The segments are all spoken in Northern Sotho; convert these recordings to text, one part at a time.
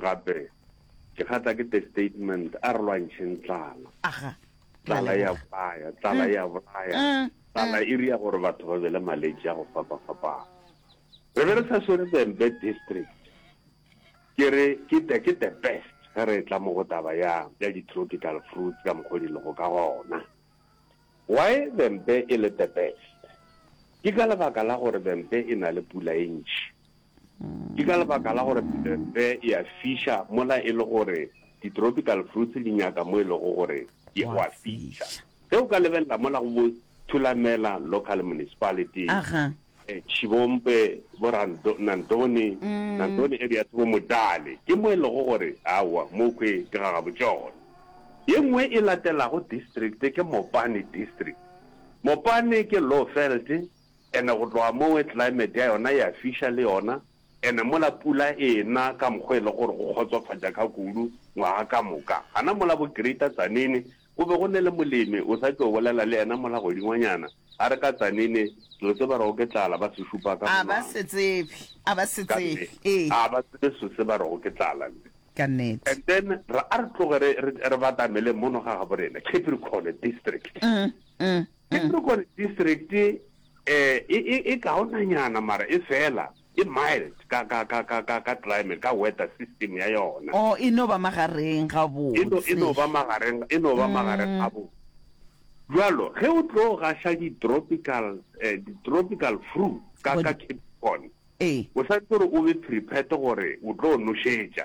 Gape, ke kgatla ke te statement, a re lwantšheng tlala. Aga. Ke a Tlala e a leboga. bolaya, tlala e a bolaya. Mm, mm. Tlala e ria gore batho ba be le maletši a go fapa-fapana. Re be re sa swere Vhembe District. Ke re, ke the, ke the best ge re e tla mo go taba ya, ya di-tropical fruits ka mokgwa o di lego ka gona. Why the mpe e le the best? Ke ka lebaka la gore the mpe e na le pula e ntši. Ke ka lebaka la gore the mpe e a fiša mola e le gore di-tropical fruits di nyaka mo e lego gore e Wa a fiša. fiša. Ge o ka lebelela mola go bo Thulamela Local Municipality, Aha. Tšhibompe, bo Rando, Nantoni, Nantoni ebe ya se bo Modale. Ke mo e lego gore, aowa, mokhwi ke ga Gabotšogo. Ye nngwe e latelago district ke Mopane District. Mopane ke low veld and go tloga mowe climate ya yona ya fiša le yona and mola pula e na ka mokgwa e lego gore go kgotsofatša ka kudu ngwaga ka moka. Gana mola bo Greater Tzaneen Go be go ne le molemi o sa tšo bolela le yena mola godingwanyana, a re ka tsanene, Ke yo tseba rego ke tlala, ba se šupa ka monwana. A ba se tsebe, a ba se tsebe, ee. Ka nnete, a ba tsebe so se ba rego ke tlala, mme. Ka nnete. And then, re, a re tloge re, re, re batamele mono ga gabo rena, Capricorn District. Capricorn District e, e, e, e kaonanyana, mara e fela. E mild ka, ka, ka, ka, ka, ka climate, ka weather system ya yona. Oh, e no ba magareng gabotse. E no, e no ba magareng, e no ba magareng gabotse. Bjalo, ge o tlo gaša di-tropical, eh, di-tropical fruit ka, ka Cape Town, o swanetše gore o be prepared gore o tlo nošetša.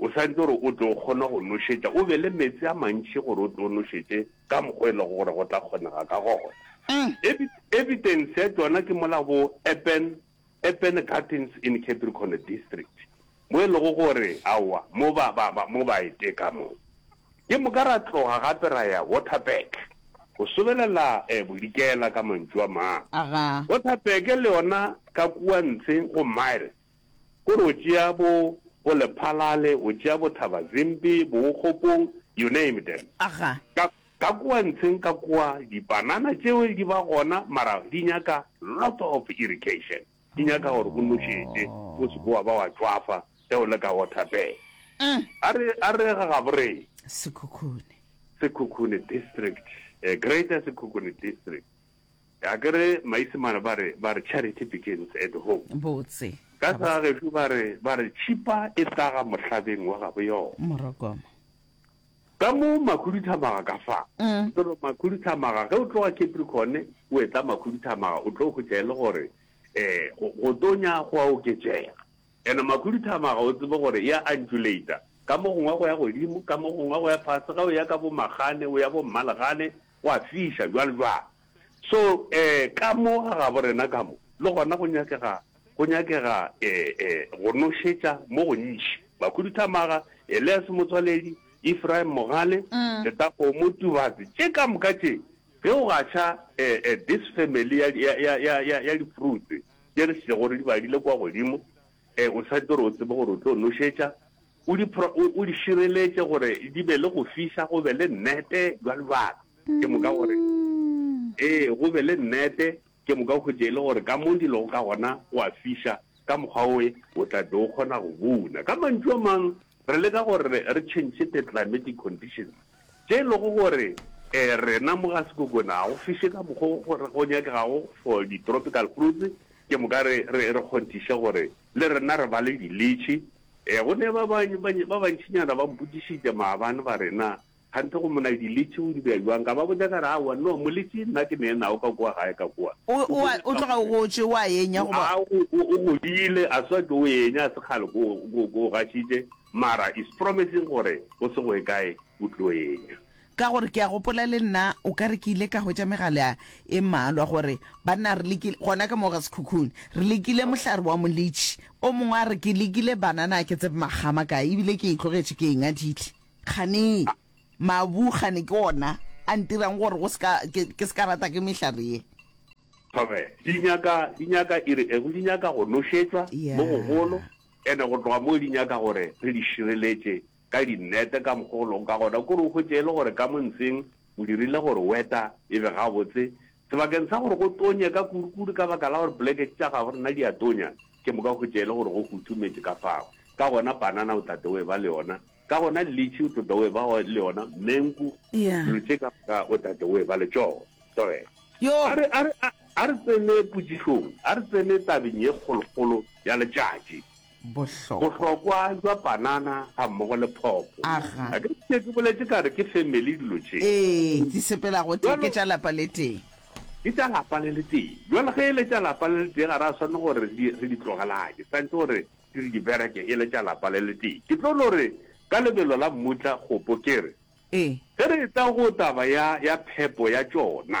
O swanetše gore o tlo kgona go nošetša, o be le meetse a mantši gore o tlo nošetše ka mokgwa e lego gore go tla kgonega ka gona. Evidence ya tšona ke mola bo Eppen, Eppen Gardens in Capricorn District, mo e lego gore aowa mo ba, ba, ba, mo ba e teka mo. Ke moka ra tloga gape ra ya Waterberg, go sobelela eh, Bodikela ka mantšu a mang. Waterberg le yona ka kua ntshe go Myre, Ko re o tšea bo bo Lephalale, o tšea bo Thaba Zimpi, Bookgopong, you name them. Aga. Ka, ka kua ntsheng ka kua, dipanana tšeo di ba gona, mara di nyaka lot of irrigation. Di nyaka gore o nošetše, o se ke wa ba wa tšwafa ge o le ka Waterberg. A re, a re ga gaboreng. Sekhukhune. Sekhukhune District, eh, Greater Sekhukhune District. Akere Maisemane ba re, ba re charity begins at home. Botse. Ka sa gešo ba re, ba re tšhipa e hlaga mohlabeng wa gabo yona. Morokomo. Ka mo Makhuduthamaga ka fa. Mm. Toro Makhuduthamaga, ge o tloga Capricorn, o etla Makhuduthamaga, o tlo hwetša e le gore, eh, go, go tonya go a oketšega. Ene Makhuduthamaga o tsebe gore ya undulate, ka mo gongwe go ya godimo, ka mo gongwe go ya fase, ge o ya ka bo Magane, o ya bo Mmalegane, Gwa fiša, bjalo jwang? So, e, ka mo ga gaborena ka mo, le gona go nyakega, go nyakega, e, e, go nošetša mo gontši. Bakhuduthamaga, Elias Motswaledi, Ephraim Mogale, Setakgomo, Tubatse, tše ka moka tše, ge o gaša, e, e, this family ya, ya, ya, ya, ya, ya di-fruits tše re šetšego re di badile kua godimo, e, o sa tlo re o tsebe gore o tlo nošetša, O di, o, o di šireletše gore di be le go fiša, go be le nnete, bjalo bjalo. Ke moka gore, ee, go be le nnete, ke moka go tše e le gore ka mo di lego ka gona go a fiša, ka mokgwa oe o tla be o kgona go buna. Ka mantšu a mang, re leka gore re, re tšhentšhe the climatic conditions, tše e lego gore e, rena mo ga sekokona ga go fiše ka mokgwa o go, go nyakegago for di-tropical fruits, ke moka re, re, re kgonthiše gore le rena re ba le di-litšhi, Ee, go ne ba bang, ba bantšinyana ba mpotšišitše maabane ba re, Na kganthe go mona diletše o di bea bjang? Ka ba botša ka re, Aowa, no, moletše nna ke neenna o ka kua gae ka kua. O, o, o a, o tloga o gotše, o a enya goba? A, o, o, o godile, a swa ke o enya, a se kgale ke o, ke o, ke o gašitše, mara is promising gore go se go ye kae o tlo enya. Ka gore ke a gopola le nna o ka re ke ile ka hwetša megala e mmalwa gore, Banna, re lekile, gona ka mo ga sekhukhung, re lekile mohlare wa molitši. O mongwe a re, Ke lekile banana ke tsebe makgama kae, ebile ke e tlogetše ke e ngadile. Kgane mabu, kgane ke ona a ntirang gore go se ka, ke, ke se ka rata ke mehlare ye. Thome, di nyaka, di nyaka e re eng? Di nyaka go nošetšwa mo gogolo, ene go tloga moo di nyaka gore re di šireletše ka dinnete ka mokgwa o lego ka gona, kore o hwetše e le gore ka mo ntseng o dirile gore weta e be gabotse sebakeng sa gore go tonye ka kudukudu ka baka la gore polekete tša gago rena di a tonya, ke moka o hwetše e le gore go futhumetše ka fao. Ka gona panana o tla tla o e-ba le yona, ka gona litšhi o tlo tla o e-ba le yona, menku, dilo tše ka moka o tla tla o e-ba le tšona. Tlogela. A re, a re, a, a re tsene potšišong, a re tsene tabeng ye kgolokgolo ya letšatši. Bohlokwa. Bohlokwa jwa panana ga mmogo le phopo. Aga. A ke se ke boletše ka re ke family dilo tše. Ee, di sepela go tee, ke tša lapa le tee. Ke tša lapa le le tee. Jwale ge e le tša lapa le le tee ga ra swanne gore re di re di tlogelanye. Santse gore di re di bereke e le tša lapa le le tee. Ke tlo no re ka lebelo la mmutla kgopo ke re. Ee. Ge re etla go taba ya ya phepo ya tšona.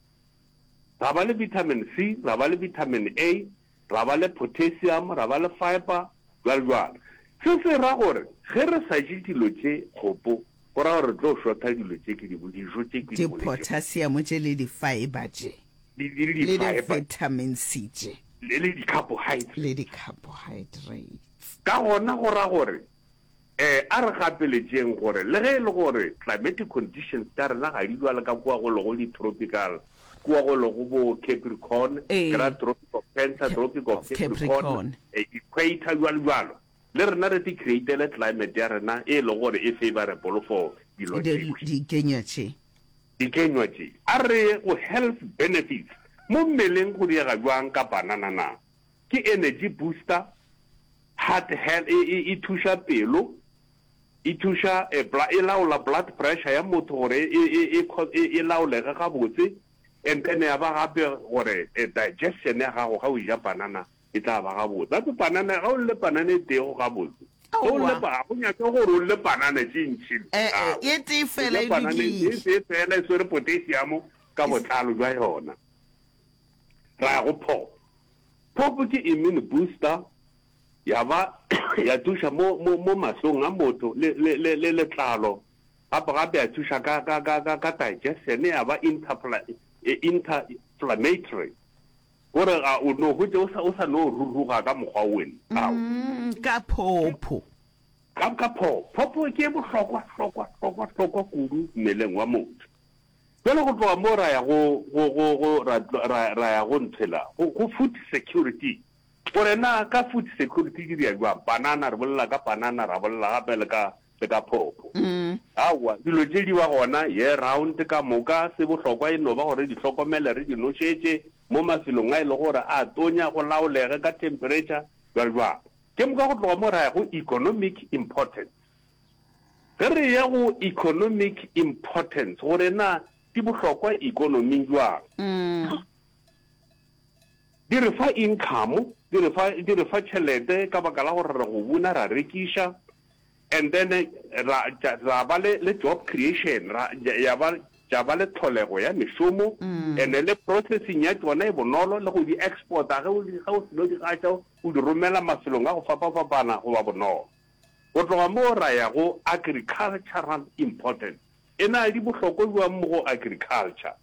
Ra ba le vitamin C, ra ba le vitamin A, ra ba le potassium, ra ba le fibre, bjalo bjalo. Se se ra gore ge re sa je dilo tše kgopo, go ra gore re tlo šotha dilo tše ke di bo, dijo tše ke di boledi. Di-potassium tše le di-fibre tše, le di-vitamin C tše, le di-carbohydrates. Ka gona go ra gore Ee, a re gapeletšeng gore le ge e le gore climatic conditions tša rena ga di bjale ka kua go lego di-tropical, kua go lego bo Capricorn, ke ra Tropic of Cancer, Tropic of Capricorn, Equator, bjalo bjalo, le rena re ti-createle climate ya rena e e lego gore e favourable for dilo tše, dikenywa tše. A re ye go health benefits, mo mmeleng go diega bjang ka banana na? Ke energy booster, heart health, e, e, e thuša pelo, e thuša, e, bla, e laola blood pressure ya motho gore e, e, e, e, e laolege gabotse, and then ya ba gape gore e, digestion ya gago ga o ja panana e tla ba gabotse. Gape panana, ga o lle panana e tee go gabotse. Ge o lle, Aowa. ga go nyake gore o lle panana tše ntši, E-e, aowa. e tee O fela ja e panana e lokile. tee fela e swere potassium ka botlalo bja yona. ra ya go POP. POP ke immune booster, ya ba ya thuša mo, mo, mo mahlong a motho le, le, le, le letlalo. Gape gape ya thuša ka, ka, ka, ka, ka digestion, ya ba interpla, e, interflammatory. Gore ga o no hwetše o sa, o sa no ruruga ka mokgwa wen. Ao. Mm, ka phopho. Ka, ka phopo. Phopo ke e bohlokwa, hlokwa, hlokwa, hlokwa kudu mmeleng wa motho. Bjale go tloga moo ra ya go, go, go, go ra, ra, ra ya go ntho ela, go, go food security. Gore na ka food security ke dira jwang? Panana, re bolela ka panana, ra bolela gape le ka, le ka phopho. Aowa, dilo tše di ba gona year round ka moka. Se bohlokwa e no ba gore re di hlokomele, re di nošetše mo mafelong a e lego gore a tonya, go laolege ka temperature, jwalo-jwalo. Ke moka go tloga moo ra ya go economic importance. Ge re eya go economic importance, gore na di bohlokwa ikonoming bjang, di re fa income, di re fa, di re fa tšhelete ka baka la gore re go buna, ra rekiša and then ra, ra ba le, le job creation, ra, ya ba, tša ba le tlholego ya mešomo and le processing ya tšona e bonolo, le go di exporta ge o di, ge o seno di gaša o di romela mafelong a go fapa-fapana go ba bonolo. Go tloga moo ra ya go agricultural importance. E na le bohlokwa bjang mo go agriculture?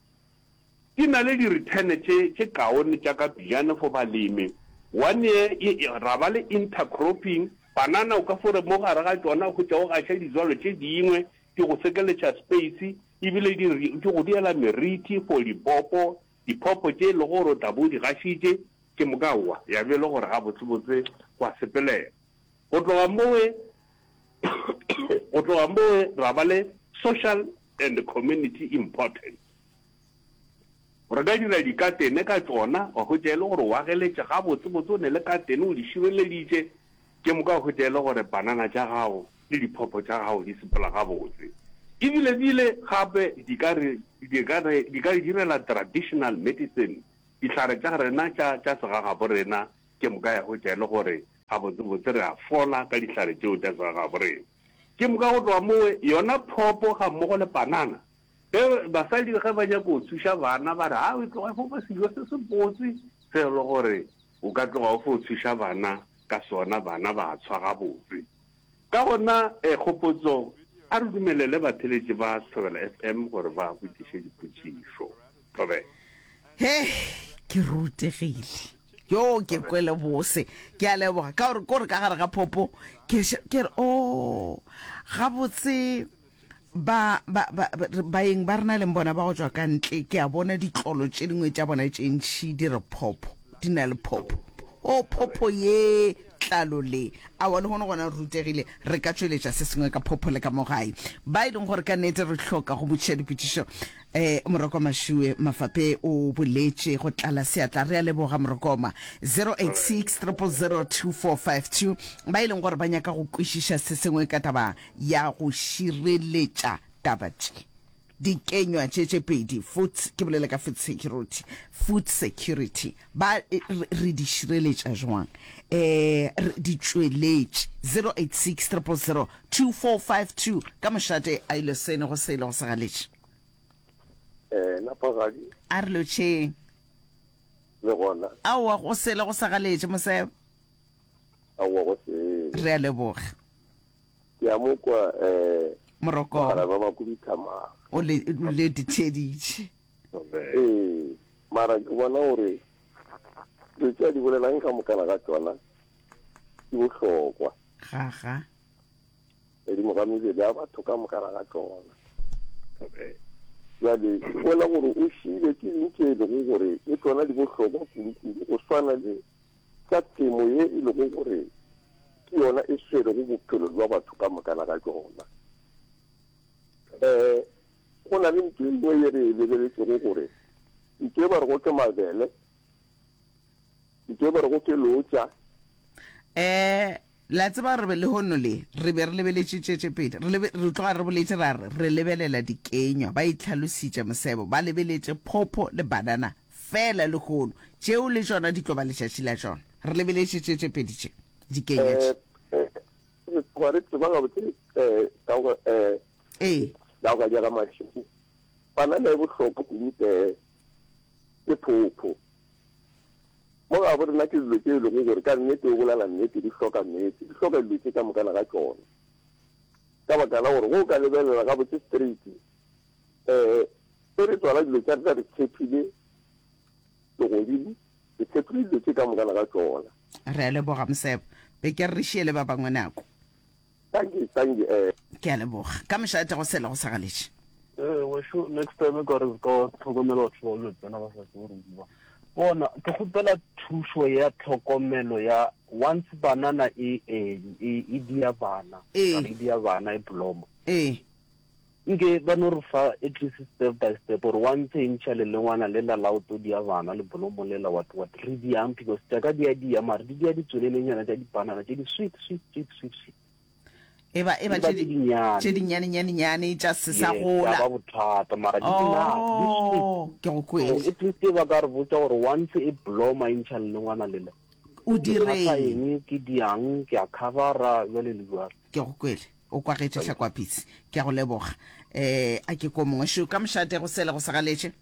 Di na le di-return tše tše kaone tša ka pejana for balemi. One ye e, ra ba le intercropping. Banana o ka fo re mo gare ga tšona o hwetša o gaša dijalo tše dingwe, di go sekeletša space ebile di re, di go diela meriti for lipopo, dipopo tše e lego gore o tla bo o di gašitše ke moka wa ya be e le gore gabotsebotse wa sepelela. Go tloga mowe, go tloga mowe ra ba le social and community importance. Re ka dira dikatene ka tšona, wa hwetša e le gore o ageletše gabotsebotse, o ne le katene o di šireleditše, ke moka o hwetša e le gore panana tša gago le diphopho tša gago di sepela gabotse. Ebilebile gape di ka re, di ka re, di ka re direla traditional medicine, dihlare tša rena tša, tša segagaborena Ke moka ya hwetša e le gore gabotsebotse re a fola ka dihlare tšeo tša segaborena. Ke moka go tloga moo, yona phopo gammogo le panana, ge basadi ge ba nyaka go thuša bana ba re, Haa, tloga fo ba sejo se sebotse se e le gore o ka tloga o fo thuša bana ka sona, bana ba tshwa gabotse. Ka gona, kgopotso, A re dumelele batheeletši ba Thobela FM gore ba botšiše dipotšišo. Thobela. He, ke rutegile. Yo, ke kwele bose. Ke a leboga. Ka gore, kore ka gare ga phopo, ke, ke re, Oo, gabotse. Ba, ba, ba, baeng ba rena leng bona ba go tšwa ka ntle, ke a bona ditlolo tše dingwe tša bona tše ntši di re phopho, di na le phopho. O, phopho ye, tlalo le. Aowa, lehono gona re rutegile, re ka tšweletša se sengwe ka phopho le ka mo gae. Ba e leng gore ka nnete re hloka go botšiša dipotšišo. Um, Morokoma Shuwe Mafape o boletše go tlala seatla. Re a leboga, Morokoma. 086 000 2452, ba e leng gore ba nyaka go kwešiša se sengwe ka taba ya go šireletša taba tše. Dikenywa tše tše pedi, food, ke bolela ka food security, food security, ba re di šireletša jwang? Eh, di tšweletše. 086 000 2452 ka mošate a ile sene go sele go segaletše. Eh, napagadi. A re lotšheng. Le gona. Aowa go sele go segaletše mosebe. Aowa go sele. Re a leboga. Ke a mo kwa eh Moroko. Mogala ba ba kuduthamang. O le o le ditsheditše. Ee, mara ke bona gore dilo tša di bolelang ka mokana ga tsona ke bohlokwa. Ga ga. Edimo ga mebele ya batho ka mokana ga tsona. Jale ke bona gore o šile ke dintše e lego gore le tsona di bohlokwa kudu-kudu go swana le tša temo ye e lego gore ke yona e swerego bophelo bja batho ka mokana ga tšona. Um go na le ntho e nngwe ye re e lebeletšego gore ntho e ba rego ke mabele, ntho e ba rego ke lotša. Um Le a tseba, re be lehono le, re be re lebeletše tšetšepele, re lebe, re tloga re boletše ra re, re lebelela dikenywa, ba itlhalositše mosebo, ba lebeletše phopho le banana feela lehono, tšeo le tšona di tlo ba letšatši la tšona. Re lebeletše tšetšepele tše, dikenywa tše. Ee, ee, re tloga re tseba gabotse, ee, ka go, ee, Ee. ka go kanyega mašwi, banana e bohloko kudu, ee, le phopho. Mo ga bo rena ke dilo tše e lego gore ka nnete o bolela nnete, di hloka meetse, di hloka dilo tše ka mokana ga tšona. Ka baka la gore ge o ka lebelela gabotse straight, um ge re tswala dilo tša rena re tshepile legodimo, re tshepile dilo tše ka mokana ga tšona. Re a leboga, Mosebo. Be ke re re šiele ba bangwe nako. Thank you, thank you. Eh. Ke a leboga. Ka mešo etago sela go sa galetše. Eh, wešo next time ka re ka tlhokomela batho ba le tsena ba sa tsebo re bua. Bona, ke kgopela thušo ya tlhokomelo ya once banana e e e dia bana. E dia bana e bloma. Eh. Nke ba no re fa at least step by step gore wa ntshentšha lelengwana lela la o tlo dia bana le bolomo lela what what re diang because tša ka di a dia mare di dia ditswelelenyana tša dipanana tše di sweet sweet sweet sweet sweet e ba e ba tše dinnyane tše dinnyane nyane nyane tša se sa gola ba bothata mara di na di sweet oh, ke go kwele at least ba ka re botsa gore once e bloma e ntšha le ngwana lela o direng ke diang ke a covera jwale le jwalo Ke a go kwele, o kwagetše Hlakwapitsi. Ke a go leboga. Eh, a ke ko mongwe šo ka mošate go sele go segaletše.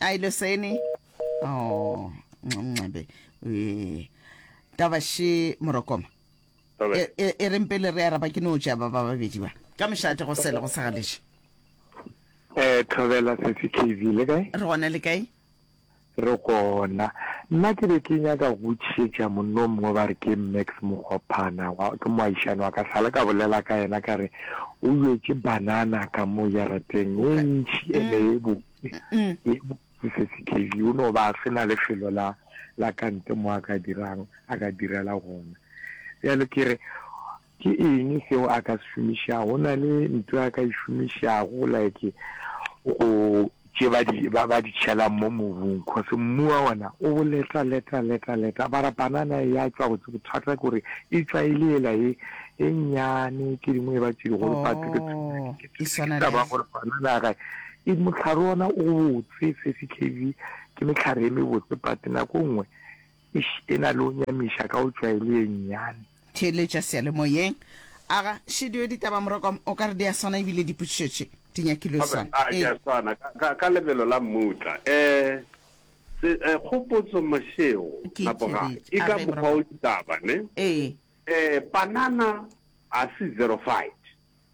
A e leseni. Oh, ncabe. Eh, taba še morokoma. Taba. E, e, e reng pele re araba ke no tša ba ba babedi ba. Ka mošate go sele go segaletše. Eh, Thobela Sesi KV le kae? Re gona le kae? Re gona. Nna ke be ke nyaka go botšišetša monnomngwe ba re ke Max Mokgophana, wa, ke moagišani wa ka, sa le ka bolela ka yena ka re o bjetše banana ka mo jarateng e ntši e ne e botse, e botse se se khebi, o no ba a se na lefelo la, la kante mo a ka dirang, a ka direla gona. Bjale ke re, Ke eng seo a ka se šomišago? Go na le ntho a ka e šomišago like go tše ba di ba ba di tšhelang mo mobung cause mmu wa ona o boleta leta leta leta bara banana e ya tšwa go tse bothata ke gore e tšwa e le ela e e nyane ke dingwe e ba tše digolo but ke oh, ke e swana ba gore banana ga e motlhare ona o botse 30 kv ke metlhare e mebotse but nako nngwe Eish e na le o nyamiša ka o tšwaeli ye nnyane. Theeletša seyalemoyeng. Aga, Shediwe ditaba Morokom o ka re di a swana ebile dipotšišo tše di nyakilwe Ga swana. a di a Ee. swana ka, ka, ka lebelo la mmutla. Eh, se, eh, kgopotso Mashego, Ke napo ga, theeletše. e A ka re mokgwa o Morokom. ditaba, ne? Ee. Eh, panana a se xerophyte.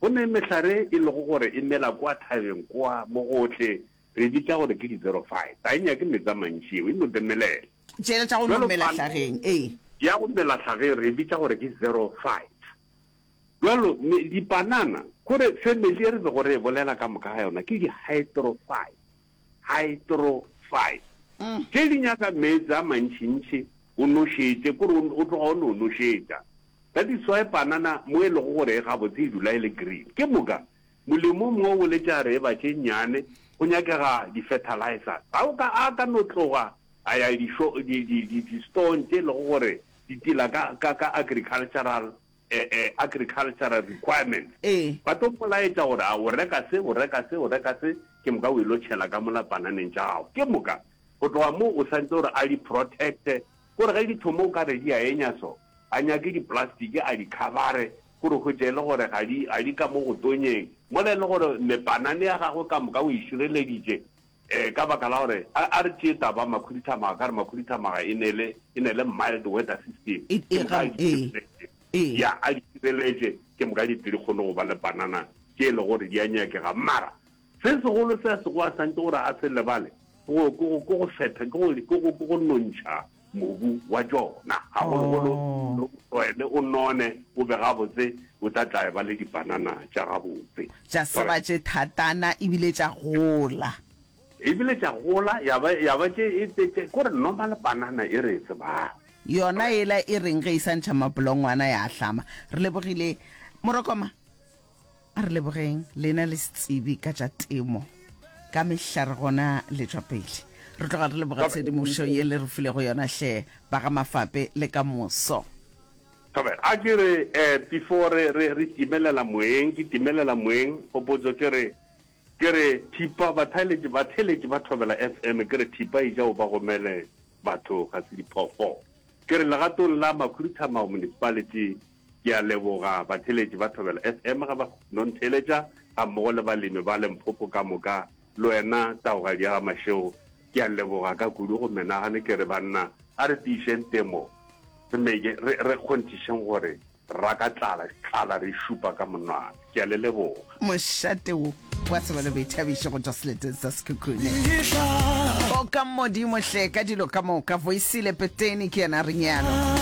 Go ne mehlare e lego gore e mela kwa thabeng kwa mo go tle Re e bitša gore ke di-xerophyte. Ga e nyake meetse a mantši yeo, e no demelela. Tšela tša go no mela hlageng, ee. Ya go mela hlageng re e bitša gore ke xerophyte. Bjalo, me, dipanana, kore family ye re bego re e bolela ka moka ga yona ke di-hydrophyte. Hydrophyte. Tše di nyaka meetse a mantšintši o nošetše, kore o, o tloga o no nošetša. That is why panana mo e lego gore e gabotse e dula e le green. Ke moka Molemong wo wo letšaareba tše nnyane go nyakega di-fertilizer tsa o ka a ka no tloga a ya dixo, di, di, di, di-stone tše e lego gore di tila ka, ka, ka agricultural, eh, eh, agricultural requirements. Ee. Ba tlo mmolaetša gore a o reka se, o reka se, o reka se, ke moka o ilo tšhela ka mola pananeng tša gago. Ke moka go tloga moo o santse gore a di protect-e, gore ge di thoma o ka re di a enya so, a nyake di-plastic a di khabare Gore hwetše e le gore ga di, ga di ka mo go tonyeng, mola e le gore mepanane ya gagwe ka moka o e šireleditše, ee, ka baka la gore, a, a re tšee taba makhuduthamaga ka gore makhuduthamaga e ne le, e ne le mild weather system, E, ke e, moka a gabo, di ee, šireletše, ee. ya, a di šireletše, ke moka di, di kgone go ba le panana tše e le gore di a nyakega. Mara. Se segolo se a sego a santše gore a se lebale ke go fetha, ke gore ke go, ke go nontšha mobu wa tšona, gagologolo o tlwaele o none, o be gabotse, o tla tla eba le dipanana tša gabotse. Tša seba tše thatana e bile tša gola. E bile tša gola ya ba, ya ba tše, tše, tše, ke gore normal panana e re e tsebago. Yona yela e reng ge e sa ntšha mapolongwana ya ahlama? Re lebogile, Morokoma. A re lebogeng lena le setsebi ka tša temo. Ka mehla re gona le tšwa pele. Re tloga re leboga tshedimošo ye le re filego yona hle ba ga Mafape le ka moso. Thobela, A ke re eh before re re re timelela moeng ke timelela moeng kgopotso ke re ke re thipa batheletši batheletši ba Thobela FM ke re thipa e ja o ba gomele batho ga se diphoofolo. Ke re legatong la Makhuruthamao Municipality Ke a leboga batheeletši ba Thobela FM ge ba no ntheeletša gammogo le balemi ba Limpopo ka moka. Le wena taogadi ya ga Mashego ke a leboga ka kudu go menagane. Ke re banna a re tiišeng temo, re meke re re kgonthišeng gore ra ka tlala tlala re e šupa ka monwana. Ke a le leboga. Mošate wo wa tseba le boithabišo go tšwa seleteng sa Sekhukhune. O ka Modimo hle ka dilo ka moka. Voisile Peteni ke yena a re nyalo.